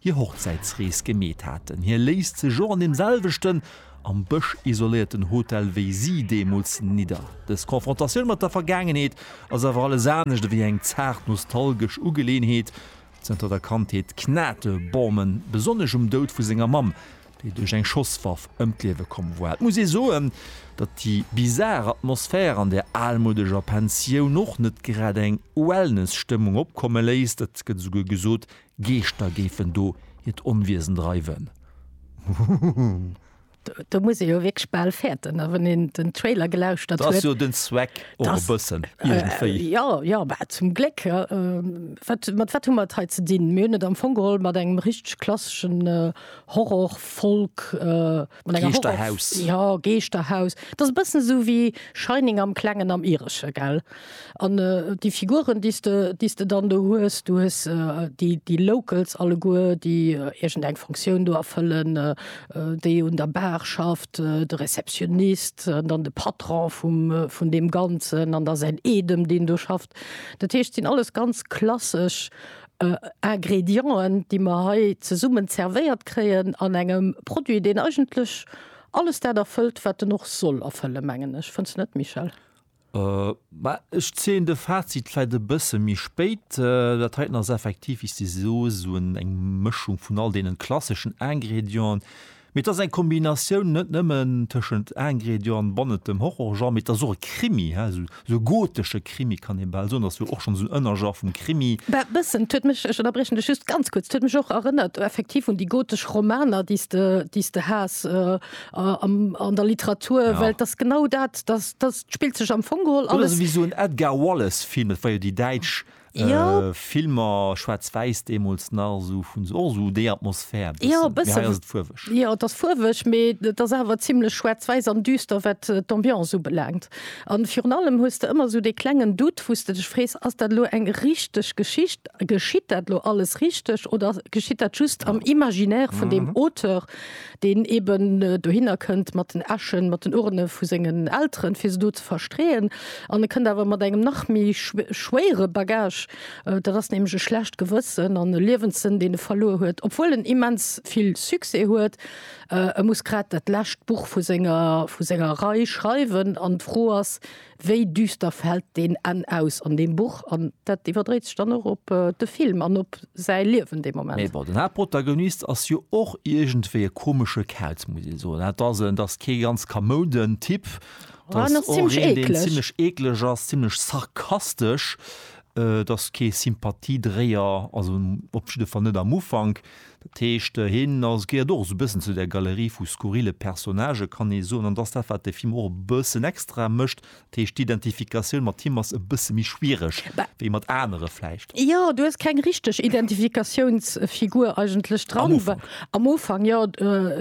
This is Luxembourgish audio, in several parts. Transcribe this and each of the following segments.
hir Hochzäitsrees gemeet haten. Hie léisst sech och an deem selwechten, am Bësch isoléierten Hotel wéi si deemools nidder. Dës Konfrontatioun mat der Vergaangenheet ass awer alles anescht ewéi eng zaart nostalgesch Ugeleeënheet. Zënter der Kandheet knate Bauman besonnesch um Doud vu senger Mamm, déi duerch eng Schosswaff ëm d'Liewe komm war. Et muss ee soen, datt déi bizar Atmosphär an där almodeger Pensioun och net grad eng Wellness-Stëmmung opkomme léisst. Et gëtt esouguer gesot, Geeschter géifen do hiert Onwiesen dreiwen. Huhuhu. Do muss ee jo wierklech bal fäerten, a wann een den Trailer gelauschtert huet. Dat ass jo den Zweck och e bëssen, iergendwéi. Jo, jo, mä zum Gléck. Wat, mat wat hu mer et hei ze dinn? Mir hunn et am Fong geholl mat engem richteg klasseschen Horror, Folk, mat enger Horror. Geeschterhaus. Jo, Geeschterhaus. Dat ass e bëssen esou wéi Shining am Klengen am Iresche, gell? An déi Figuren, déi s de, déi s de dann do hues, du hues déi, déi Locals alleguer, déi iergendeng Fonctioun do erfëllen, déi un der Bar schafft, de Receptionnist an dann de Patron vum, vun deem Ganzen an da säin Eedem, deen do schafft. Dat heescht, et sinn alles ganz klassesch Ingredienten, déi mer hei zesummen zervéiert kréien an engem Produit, deen eigentlech alles dat erfëllt, wat en och soll erfëllen, mengen ech. Fënns de net, Michèle? Mä ech zéien de Fazit vläit e bësse méi spéit. Dat heiten ass effektiv, wéi s de soos, esou eng Mëschung vun all deenen klasseschen Ingrédienten. Mee et ass eng Kombinatioun net nëmmen tëschent Ingrédienten bannent dem Horrorgenre, mee et ass och e Krimi, hä, esou e gotesche Krimi kann ee bal soen. Ass jo och schonn esou en Ënnergenre vum Krimi. Bah, e bëssen. Et huet mech, ech ënnerbriechen dech just ganz kuerz, et huet mech och erënnert effektiv un déi gotesch Romaner, déi s de, déi s de has. äh, an der Literatur ja. well das genau dat das, das spielt sech am Fongehol alles wie so en Edgar Wallace Film war jo die Deitsch. Oh. Äh, ja. Äh, Filmer schwarz-weiß demos nach so vun so, so de Atmosphär ja, fuwech ja, das fuwech me das awer ziemlich schwarz-weiß an düster wat äh, d'ambiance so belangt an Fi allem hust du immer so de klengen Dut wusste dich frees as dat lo eng richtig Geschicht geschiet dat lo alles richtig oder geschiet dat just ja. am imaginär vun mhm. dem Auteur deen eben dohinner kënnt mat den Äschen, mat den Urne vu sengen Elteren, fir se do ze verstreeën. An e kënnt awer mat engem nach méi schwéiere Bagage, dat ass nämlech e schlecht Gewëssen an e Liewenssënn, deen e verluer huet, obwuel en immens vill Succès huet. E muss grad dat lescht Buch vu senger Rei schreiwen an d'Fro ass, Wéi düster fält deen Enn aus an deem Buch? An dat iwwerdréit sech dann och op de Film an op säi Liewen dee Moment. Mee bon, den Haaptprotagonist ass jo och iergendwéi e komesche Kauz, muss ee soen. Dat ass en, dat ass kee ganz kamouden Typ. Dat ass och een, deen zimlech eekleg ass, zimlech sarkastesch. Dat ass kee Sympathiedréier, also op jidde Fall net am Ufank. Dat heescht, hien ass, gehéiert och esou e bëssen zu där Galerie vu skurrile Personnagë, kann ee soen. An dat ass dat, wat de Film och e bëssen extra mécht. Dat heescht, d'Identifikatioun mat him ass e bësse méi schwiereg wéi mat anere vläicht. Jo, du hues keng richteg Identifikatiounsfigur eigentlech dran. Am Ufank. Am Ufank, jo.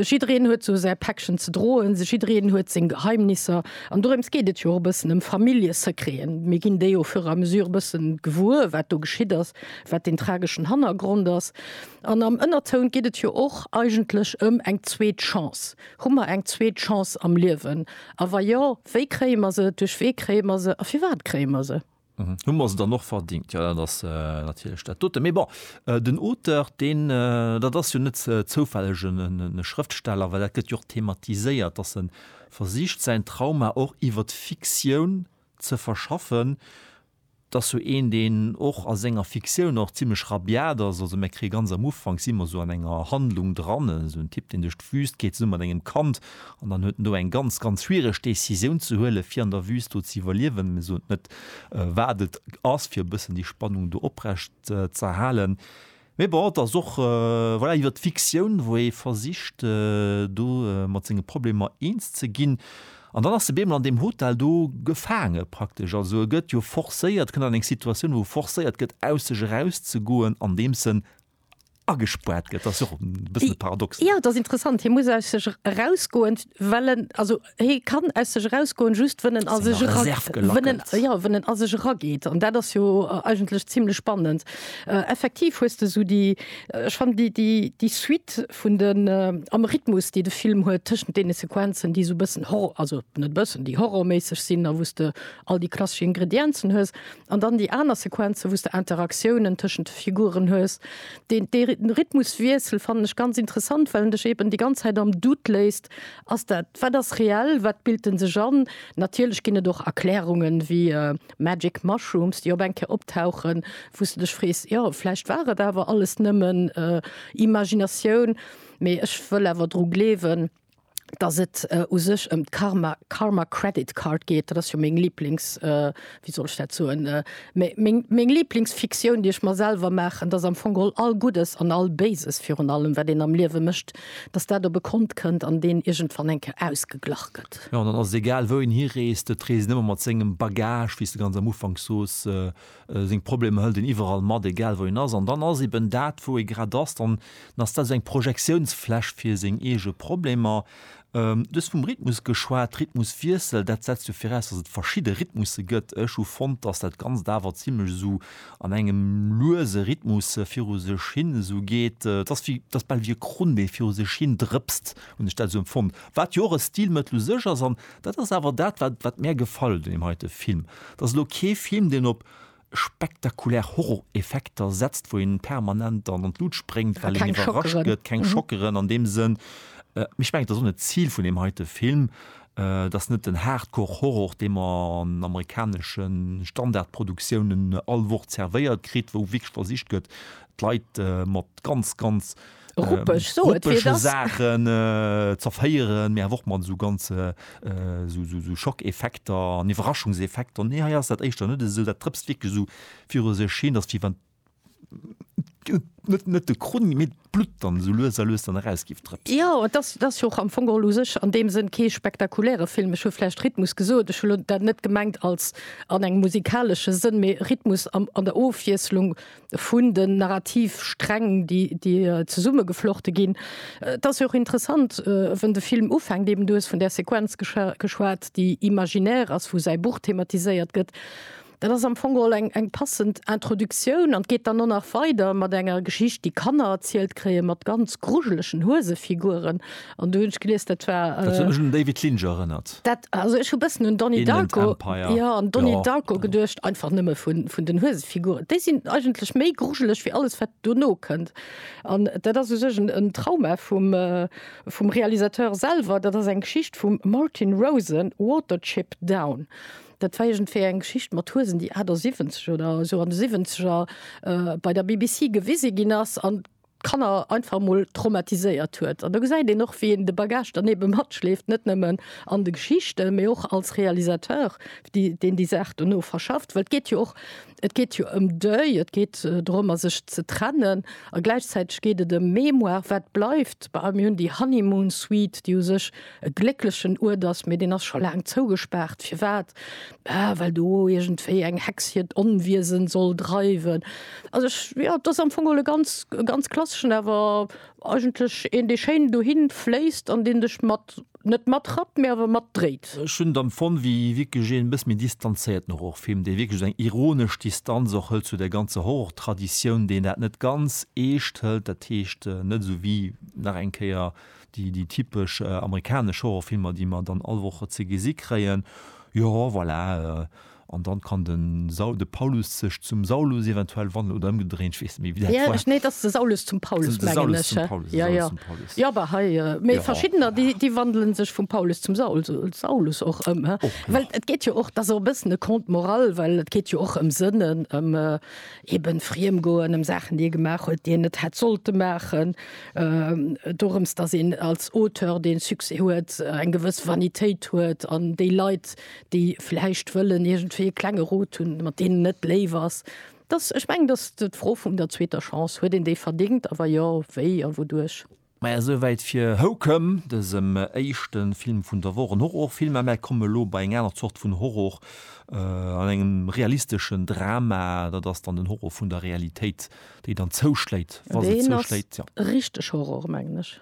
Jiddereen huet sou säi Päckchen ze droen. Jiddereen huet seng Geheimnisser. An dorëms geet et jo och e bëssen, ëm Familljesecreten. Mir ginn déi au fur et à mesure e bëssen gewuer, wat do geschitt ass, wat deen trageschen Hannergrond ass. An am Ënnertoun geet et jo och eigentlech ëm eng zweet Chance. Hu mer eng zweet Chance am Liewen? A wa jo, wéi kréie mer se, duerch wee kréie mer se a firwat kréie mer se? Hu mer se dann och verdingt? Jo, dat ass natierlech dat dote. Mee bon, den Auteur, deen, dat ass jo net zoufälleg e Schrëftsteller, well dat gëtt jo och thematiséiert, dass e versicht säin Trauma och iwwer d'Fiktioun ze verschaffen, 't ass sou een, deen och a senger Fiktioun och zimlech rabiat ass. Also mär kréie ganz am Ufank, si mer sou an enger Handlung dran, sou en Typ, deen duerch d'Wüst geet zesumme mat engem Kand an dann huet en do eng ganz, ganz schwiereg Décisioun ze huelen, fir an der Wüst do ze iwwerliewen. Mir soen net, wat et ass, fir e bëssen déi Spannung do oprecht z'erhalen. Mee bon, et ass och, voilà, iwwer d'Fiktioun, wou ee versicht, do mat senge Problemer eens ze ginn. An dann ass de Bemel an deem Hotel do gefaange praktesch. Also e gëtt jo forcéiert, kënnt an eng Situatioun, wou e forcéiert gëtt, aus sech erauszegoen, andeems en agespaart gëtt. Dat ass jo och e bëssen e Paradox. Jo, et ass interessant. Hie muss aus sech erausgoen, well en, also Hie kann aus sech erausgoen, just wënn en a sech era wënn en, ja, wënn en a sech erageet. An dat ass jo eigentlech zimlech spannend. Effektiv hues de sou déi, ech fannen déi, déi, déi Suite vun den, am Rhythmus, déi de Film huet tëschent deene Sequenzen, déi sou e bëssen Hor-, also net e bëssen, déi horrorméisseg sinn a wou s de all déi klassesch Ingredienzen hues, an dann déi aner Sequenzen, wou s de Interaktiounen tëschent de Figuren hues. Deen, dee Rhythmuswiessel fannen ech ganz interessant, well en dech eeben déi ganz Zäit am Doute léisst, Ass dat, wat ass reell, wat bilt en sech an? Natierlech ginn et och Erklärungen, wéi Magic Mushrooms, déi op eng Kéier optauchen, wou s de dech frees, jo, vläicht war et awer alles nëmmen Imaginatioun. Mee ech wëll awer dru gleewen, datt et u sech ëm d'Karma, Karma Credit Card geet, dat ass jo meng Liblings wéi soll ech dat soen, äh, mä meng, meng Lieblingsfiktioun, déi ech mer selwer maachen, dass am Fong geholl all Guddes an all Béises virun allem, wat een am Liewe mécht, dass dat op e Kont kënnt an deen iergendwann eng Kéier ausgeglach gëtt. Jo, an dann ass et egal, wou een hireest, et reest een ëmmer mat sengem Bagage, wéi s de ganz am Ufank soos. Seng Problemer hëlt een iwwerall mat, egal wou een ass. An dann ass eben dat, wou ee grad ass, dann ass dat esou eng Projektiounsfläch fir seng eege Problemer, Du hues vum Rhythmus geschwat, Rhythmuswiessel, dat setzt jo viraus, datt et verschidde Rhythmusse gëtt. Ech hu fonnt, datt dat Ganzt awer zimmlech esou an engem luese Rhythmus viru sech hin esou geet. Et ass wéi, et ass bal wéi e Krunn, dee viru sech hin drëpst, hunn ech dat esou empfonnt. Wat jo och e Stilmëttel u sech ass, an dat ass awer dat, wat, wat mär gefall un deem heite Film, et ass elo kee Film, deen op spektakulär Horror-Effekter setzt, wou een permanent an an d'Lut spréngt, well een iwwerrascht gëtt, keng Schockeren an deem Sënn. Mee ech mengen, et ass och net d'Zil vun deem heite Film. Et ass net den Hardcore-Horror, dee mer an amerikanesche Standard-Produktiounen all Woch zervéiert kritt, wou wierklech versicht gëtt, d'Leit mat ganz, ganz Ruppeg, so et wéi et ass. Saachen zervéieren, mee awer och mat esou ganz esou Schockeffekter an Iwwerraschungseffekter. Nee, hei ass dat éischter net esou. Dat drëpst wierklech esou viru sech hin. Dat ass wéi wann net de Krunn, mee d'Blutt dann esou lues a lues dann eraus géif drëpsen. Jo, et ass, et ass jo och am Fong geholl u sech an deem Sënn kee spektakuläre Film. Ech hu vläicht Rhythmus gesot, ech hu lo dat net gemengt als an engem musikalesche Sënn, mee Rhythmus an der Ofwiesslung vun den Narrativsträng, déi, déi zesummegeflochte ginn. Et ass jo och interessant, wou de Film ufänkt, eben, du hues vun där Sequenz geschwat, déi imaginär ass, wou säi Buch thematiséiert gëtt. Dat ass am Fong geholl eng, eng passend Introduktioun an d'geet dann och nach weider mat enger Geschicht, déi Kanner erzielt kréien, mat ganz grujelegen Huesefiguren, an du hunn ech gelies dat war äh, David Lynch erënnert dat also ech hu bëssen un Donnie Darko ja an Donnie ja. Darko geduercht einfach nëmme vun vun den Huesefiguren déi sinn eigentlech méi grugelech wie alles wat du no kënnt an dat ass u sech en Trauma vum äh, vum Realisateur selwer dat ass eng Geschicht vum Martin Rosen Waterchip down. Dat war egent fir eng Geschicht mat Huesen, déi 78 oder so an de 70er äh, bei der BBC gewise ginn ass an d'Kanner einfach emol traumatiséiert huet. An do gesäit een och, wéi een de Bagage dann ebe matschleeft, net nëmmen an de Geschichten, mee och als Realisateur, déi, deen déi Saach dono verschafft. Well et geet jo och, et geet jo ëm Deuil, et geet dorëmmer, sech ze trennen. A gläichzäiteg geet et ëm Mémoire, wat bleift. Bah, mir hunn déi Honeymoon Suite, déi u sech e glécklechen Uert ass, mee deen ass scho laang zougespaart. Firwat? Ah, well do iergendwéi eng Hex hiert Onwiesen soll dreiwen. Also ech, jo, dat ass am Fong geholl e ganz, e ganz klasseschen, awer eigentlech een, dee schéin dohin fléisst an deen dech mat, net matrappt, mee awer matdréit. Ech hunn et empfonnt wéi wierklech een e bëssi méi distanzéierten Horrorfilm, dee wierklech esou eng ironesch Distanz och hëlt zu der ganzer Horrortraditioun, deen dat net ganz eescht hëlt, dat heescht net esou wéi, nach eng Kéier, Déi, déi typesch amerikanesch Horrorfilmer, déi mer dann all Woch ze gesi kréien. Jo, voilà. An dann kann de Saul, de Paulus sech zum Saulus eventuell wandeln oder ëmgedréint, ech weess net méi wéi dat war. Nee, et ass de Saulus zum Paulus, mengen ech. Jo, jo. Jo, bah hei, mee verschiddener, déi, déi wandelen sech vum Paulus zum Saul, Saulus och ëm. Well et geet jo och, et ass och e bëssen e Conte moral, well et geet jo och ëm Sënnen, ëm Eben friem goen ëm Saachen, déi ee gemaach huet, déi een net hätt sollte maachen. Dorëms, datt een als Auteur, dee Succès huet, eng gewëss Vanitéit huet an déi Leit, déi vläicht wëllen iergendwéi e klenge Rot hunn, mat deenen net léif ass. Datt, ech mengen, datt d'Fro vum der zweeter Chance, huet een déi verdéngt a wa jo, wéi a wouduerch? Maja sou wäit fir Houcom, dësem éischte Film vun der Woch. En Horrorfilm, mä kommen elo bei eng aner Zort vun Horror an engem realisteschen Drama. Dat ass dann den Horror vun der Realitéit, déi dann zouschléit, wa se zouschléit. Deen ass richteg Horror mengen ech.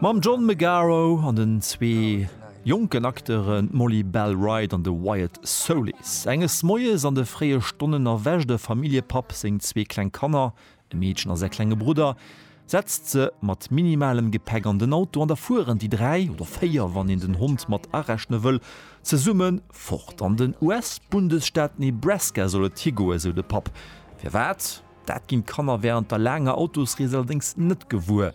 Mam John Magaro an den zwee jonken Acteuren, d'Molly Bell Wright an de Wyatt Soulis. Enges Moies an de fréie Stonnen erwächt e Familljepapp seng zwee kleng Kanner, e Meedchen a säi klenge Brudder, setzt se mat minimalem Gepäck an den Auto an da fueren déi dräi, oder véier wann een den Hond mat arechne wëll, zesumme fort. An den US-Bundesstaat Nebraska soll et higoen, sou de Papp. Firwat? Dat ginn d'Kanner wärend der laanger Autosrees allerdéngs net gewuer.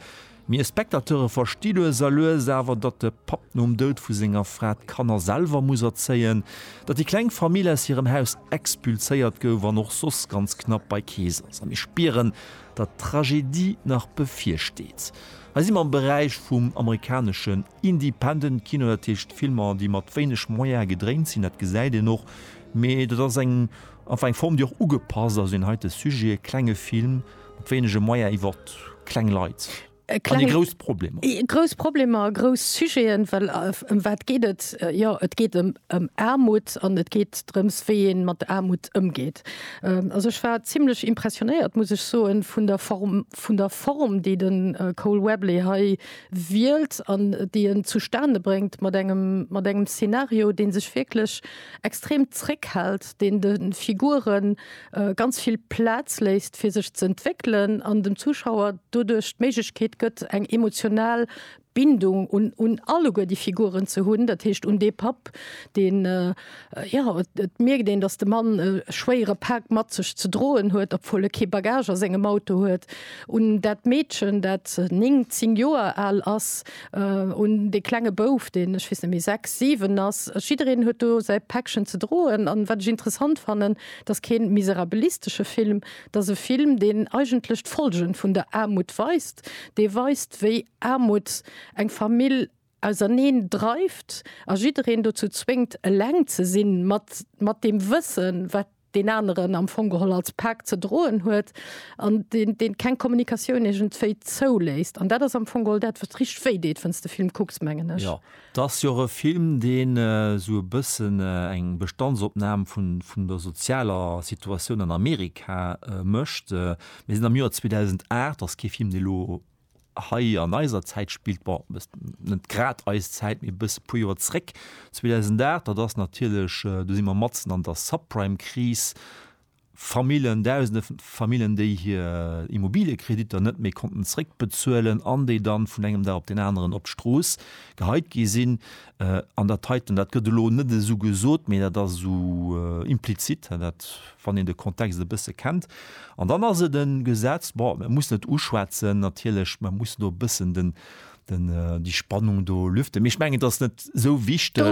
Mir Spectateure versti lues a lues awer, datt de Papp nom Doud vu senger Fra d'Kanner selwer muss erzéien, datt déi kleng Famill aus hirem Haus expulséiert gouf an och soss ganz knapp bei Kees ass. A mir spieren, datt d'Tragedie nach bevirsteet. Hei si mer am Beräich vum amerikaneschen Independent Kino, dat heescht Filmer, déi mat wéineg Moyene gedréint sinn. Dat gesäit een och, mee dat ass eng, enfin eng Form, déi och ugepasst ass un heite Sujet, e klenge Film, Mat wéinege Moyen iwwer kleng Leit an déi grouss Problemer. Grouss Problemer, grouss Sujeten, well ëm wat geet et? Jo, et geet ëm Aarmut an et geet drëms, wéi ee mat Aarmut ëmgeet. Also ech war zimlech impressionéiert, muss ech soen, vun der Form, vun der Form, déi de Cole Webley hei wielt an déi en zustane bréngt mat engem, mat engem Szenario, dee sech wierklech extrem zréckhält, deen de Figuren, ganz vill Plaz léisst fir sech ze entwéckelen an dem Zuschauer doduerch d'Méiglechkeet gëtt eng emotional Bindung un un alleguer déi Figuren ze hunn, dat heescht un dee Papp deen jo et mierkt een datt de Mann e schwéiere Pak mat sech ze droen huet, obwuel e kee Bagage a sengem Auto huet, un dat Meedchen dat 9, 10 Joer al ass, un dee klenge Bouf deen ech weess net méi 6, 7 ass. Jiddereen huet do säi Päckchen ze droen an wat ech interessant fannen, 't ass keen miserabilistesche Film, 't ass e Film, deen eigentlech d'Folgen vun der Aarmut weist, dee weist, wéi Aarmut eng Famill auserneen dreift a jiddereen dozou zwéngt, eleng ze sinn, mat mat deem Wëssen, wat deen aneren am Fong geholl als Pak ze droen huet, an deen deen keng Kommunikatioun iergendwéi zouléisst. An dat ass am Fong geholl dat, wat richteg wéi deet, wann s de Film kucks, mengen ech. Et ass jo och e Film, deen esou e bëssen eng Bestandsopnam vun der sozialer Situatioun an Amerika mécht. Mir sinn am Joer 2008, ass kee Film, dee elo hei an eiser Zäit spillt, bon, net grad eis Zäit, mee e bësse puer Joer zréck. 2008, dat ass natierlech, do si mer matzen an der Subprime-Kris, Famillen, dausende Famillen, déi hir Immobiliëkreditter net méi konnten zréckbezuelen an déi dann vun engem Dag op deen aneren op d'Strooss geheit gi sinn. An dat heiten, dat gëtt elo net esou gesot, mee dat ass esou implizit, dat, wann een de Kontext e bësse kennt. An dann ass et e Gesetz, bon, mir mussen et uschwätzen natierlech, mir mussen do e bëssen den, den die Spannung do lüften ich mengen das net so wichtig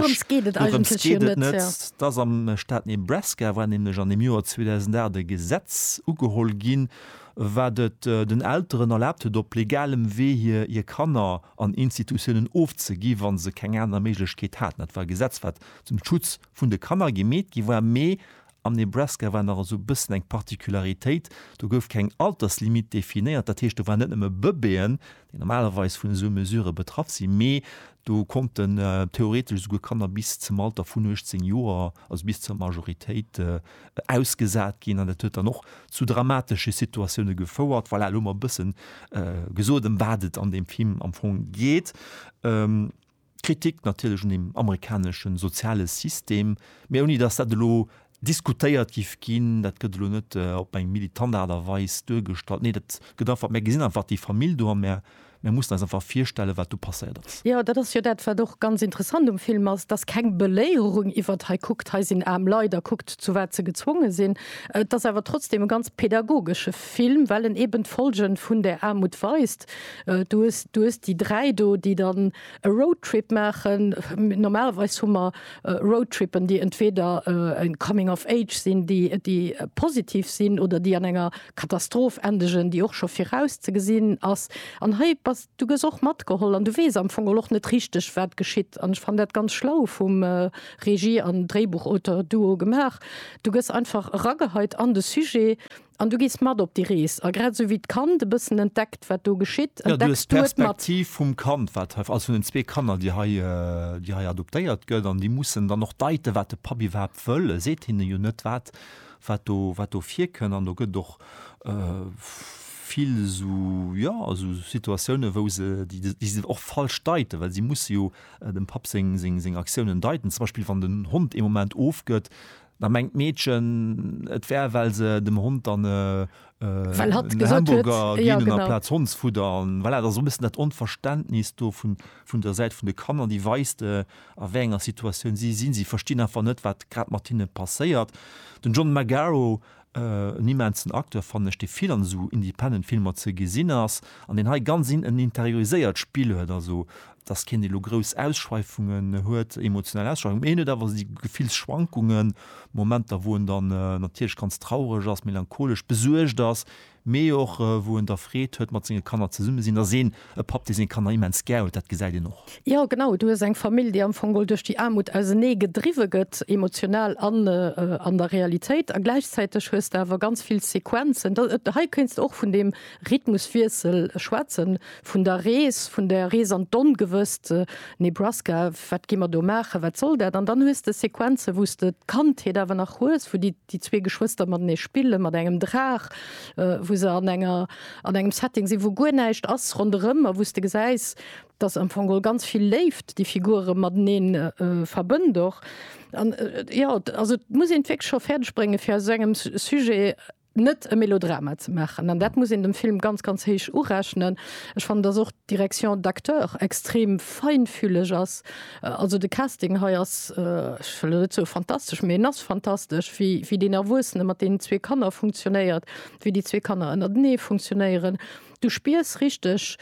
das am Staat Nebraska war nämlich an dem Joar 2008 Gesetz ugeholl gin war det äh, den Elteren erlaubt huet op legalem Wee hier hier Kanner an Institutionen ofzegi wann se keng aner Méiglechkeet haten. Dat war Gesetz wat zum Schutz vun de Kanner gemeet gi war mee Am Nebraska war nach esou e bëssen eng Particularitéit, do gouf keng Alterslimite definéiert. Dat heescht, do waren net nëmme Bëbeeën, déi normalerweis vun esou Mesurë betraff sinn, mee do konnten theoretesch esouguer Kanner bis zum Alter vun 18 Joer, also bis zur Majoritéit, ausgesat ginn. An dat huet dann och zu dramatesche Situatioune gefouert. Voilà, elo hu mer e bësse gesot, ëm wat et an deem Film am Fong geet. Kritik natierlech un dem amerikanesche soziale System, mä ouni datt dat elo diskutéiert géif ginn. Dat gëtt elo net op eng militant Aart a Weis duergestallt. Nee, dat gëtt einfach, mär gesinn einfach déi Famill do a mär mussen eis einfach virstellen, wat do passéiert ass. Jo, dat ass jo dat, wat och ganz interessant um Film ass, dass keng Beléierung iwwert hei kuckt, hei sinn aarm Leit a kuckt, zu wat se gezwonge sinn. Et ass awer trotzdem e ganz pädagogesche Film, well en eeben d'Folge vun där Aarmut weist. Du hues, du hues déi dräi do, déi dann e Roadtrip maachen. Normalerweis hu mer Roadtrippen, déi entweder e Coming of Age sinn, déi, déi positiv sinn oder déi an enger Katastroph endegen, déi och scho viraus ze gesinn ass. An hei bass, du gëss och matgeholl an du weess am Fong och net richteg, wat geschitt. An ech fannen dat ganz schlau vum Regie an Dréibuchauteur-Duo gemaach. Du gëss einfach erageheit an de Sujet. An du gees mat op déi Rees. A grad esou wéi d'Kand e bëssen entdeckt, wat do geschitt, entdecks du et mat. Jo, du hues d'Perspektiv vum Kand, wat hei, also vun den zwee Kanner, déi hei, déi hei adoptéiert gëtt. An déi mussen dann och deiten, wat de Papp iwwerhaapt wëll. E seet hinnen jo net, wat, wat do, wat do virkënn. An do gëtt et och vill esou, jo, esou Situatiounen, wou se, déi, déi se och falsch deiten, well si musse jo dem Papp seng, seng, seng Aktiounen deiten. Zum Beispill, wann den Hond ee Moment ofgëtt, Da mengt d'Meedchen, et wär, well se dem Hond dann e Hamburger ginn hunn amplaz Hondsfudder. An voilà, dat ass och e bëssen dat Onverständnis do vun der Säit vun de Kanner, déi weist, a wéi enger Situatioun si sinn. Si verstinn einfach net, wat grad mat hinne passéiert. Den John Magaro En immensen Acteur fannen ech, dee vill an esou independent Filmer ze gesinn ass an deen hei ganz en interioriséiert Spill huet. Also dass keen dee lo grouss Ausschweifungen huet, emotional Ausschweifungen, mee hien huet awer esou Gefillsschwankungen, Momenter wou en dann natierlech ganz traureg ass, melancholesch, besuergt ass, mee och wou en da Freed huet mat senge Kanner zesumme sinn, ass een e Papp dee seng Kanner immens gär huet, dat gesäit een och. Jo genau, du hues eng Famill déi am Fong duerch déi Aarmut ausenee gedriwwe gëtt, emotional an an der Realitéit, a gläichzäiteg hues de awer ganz vill Sequenzen, hei kéints de och vun deem Rhythmuswiessel schwätzen, vun der Rees, vun der Rees an d'Ongewësst, Nebraska, wat gi mer do maachen, wat soll dat, an dann hues de Sequenzen wou s de d'Kandheet awer nach hues, wou déi. déi zwee Geschwëster matenee spille mat engem Draach, wou se an enger, an engem Setting sinn, wou guer näischt ass ronderëm a wou s de gesäis, dass am Fong geholl ganz vill Léift déi Figure matenee verbënnt och. An jo, also et muss een et wierklech scho fäerdeg bréngen, fir aus esou engem Sujet net e Melodrama ze maachen. An dat muss een dem Film ganz, ganz héich urechnen. Ech fannen, dass och d'Direction d'acteurs extrem feinfühleg ass. Also de Casting hei ass, ech wëll elo net soe fantastesch, mee en ass fantastesch, wéi, wéi deen Erwuessene mat deenen zwee Kanner funktionéiert, wéi déi zwee Kanner ënnertenee funktionéieren. Du spiers richteg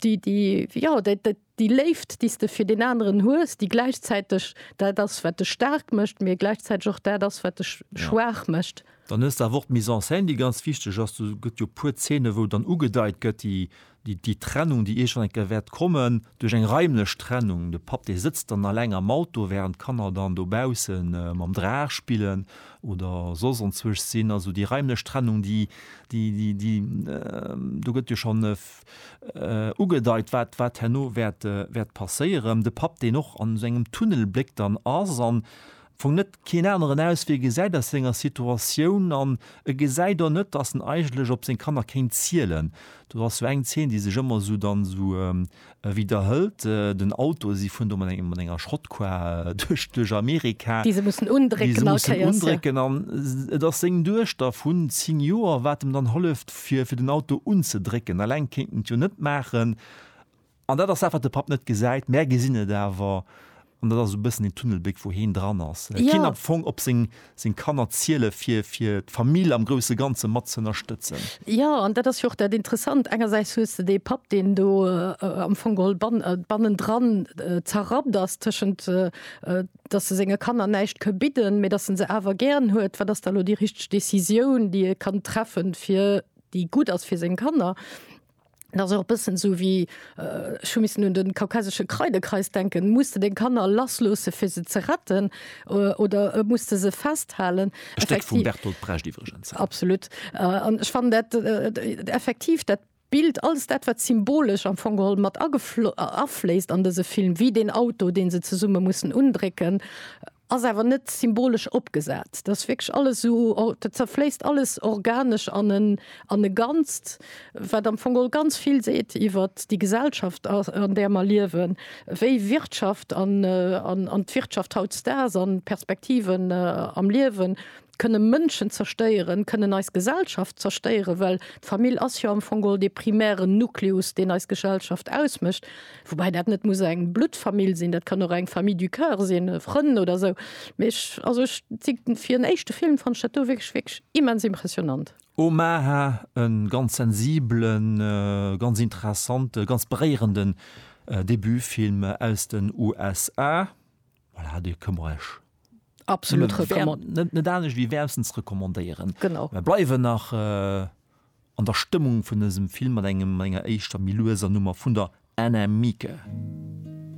déi, déi, jo, dat, dat, déi Léift, déi s de fir deen aneren hues, déi gläichzäiteg dat ass, wat dech staark mécht, mee gläichzäiteg och dat ass, wat dech schwaach mécht. Dann hues de awer och d'Mise en scène, déi ganz wichteg ass. Do gëtt jo e puer Zeene, wou dann ugedeit gëtt, déi déi Trennung, déi iergend eng Kéier wäert kommen, duerch eng raimlech Trennung, de Papp, dee sëtzt dann alleng am Auto, wärend d'Kanner dann dobausse mam Draach spillen oder soss ontzwësch sinn. Also déi raimlech Trennung, déi, déi, déi, déi, do gëtt jo schonn ugedeit, wat, wat herno wäert, wäert passéieren. De Papp, deen och an esou engem Tunnel bléckt an ass an Fong net keen aneren aus wéi e gesäit aus senger Situatioun an e gesäit och net dass en eigentlech op seng Kanner kéint zielen. Do ass sou eng Zeen déi sech ëmmer sou dann esou widerhëlt, den Auto, si fueren do mat engem mat enger Schrottkar duerch duerch Amerika, Déi se mussen déi se undrécken all mussen Kéiers, ja. undrécken an et ass seng Duechter vun 10 Joer wat em dann holleft fir fir den Auto unzedrécken, alleng kéint en et jo net maachen An dat ass dat, wat de Papp net gesäit. Mär gesinn et awer. An dat ass esou e bëssen deen Tunnelbléck, wou heen dran ass. Et geet am Fong op seng, seng Kanner ziele fir, fir d'Famill am grousse Ganze mat z'ënnerstëtzen. Jo, an dat ass jo och dat Interessant. Engersäits hues de dee Papp, deen do am Fong geholl ban, bannendran zerrappt ass tëschent, dass e senge Kanner näischt ka bidden, mä dass e se awer gären huet. Wat ass da elo déi richteg Décisioun, déi e kann treffen, fir, déi gutt ass fir seng Kanner? Et ass och bëssen esou wéi, ech hu missen un de kaukasesche Kreidekreis denken, muss de deng Kanner lassloosse fir se ze retten oder muss de se festhalen? E Stéck vum Bertolt Brecht iwwregens. Absolut. An ech fannen dat effektiv dat Bild, alles dat wat symbolesch am Fong geholl mat afléisst an dëse Film, wéi deen Auto deen se zesumme mussen undrécken, Ass awer net symbolesch opgesat. Dat ass wierklech alles esou, dat zerfléisst alles organesch an en, an e Ganzt, wat am Fong och ganz vill seet iwwer déi Gesellschaft, an där mer liewen, wéi Wirtschaft an, an d'Wirtschaft hautdesdaags an d'Perspektiven am Liewen, kënne Mënschen zerstéieren, kënnen eis Gesellschaft zerstéieren, well d'Famill ass jo am Fong geholl dee primären Nucleus, deen eis Gesellschaft ausmécht, woubäi dat net muss eng Bluttfamill sinn, dat kann och eng Famille du coeur sinn, Frënn oder esou. Mee ech, also ech si, fir en éischte Film fannt ech dat do wierklech, wierklech immens impressionant. Omaha, e ganz sensiblen, ganz interessante, ganz beréierende Debutfilm aus den USA. Voilà, Dir këmmer ech absolut net anecht wie wärmstens rekommandéieren. Genau Mer bleiwen nach äh, an der Stëmmung vun dësem Film mat engem enger éischter méi lueser Nummer vun der Anna Mieke.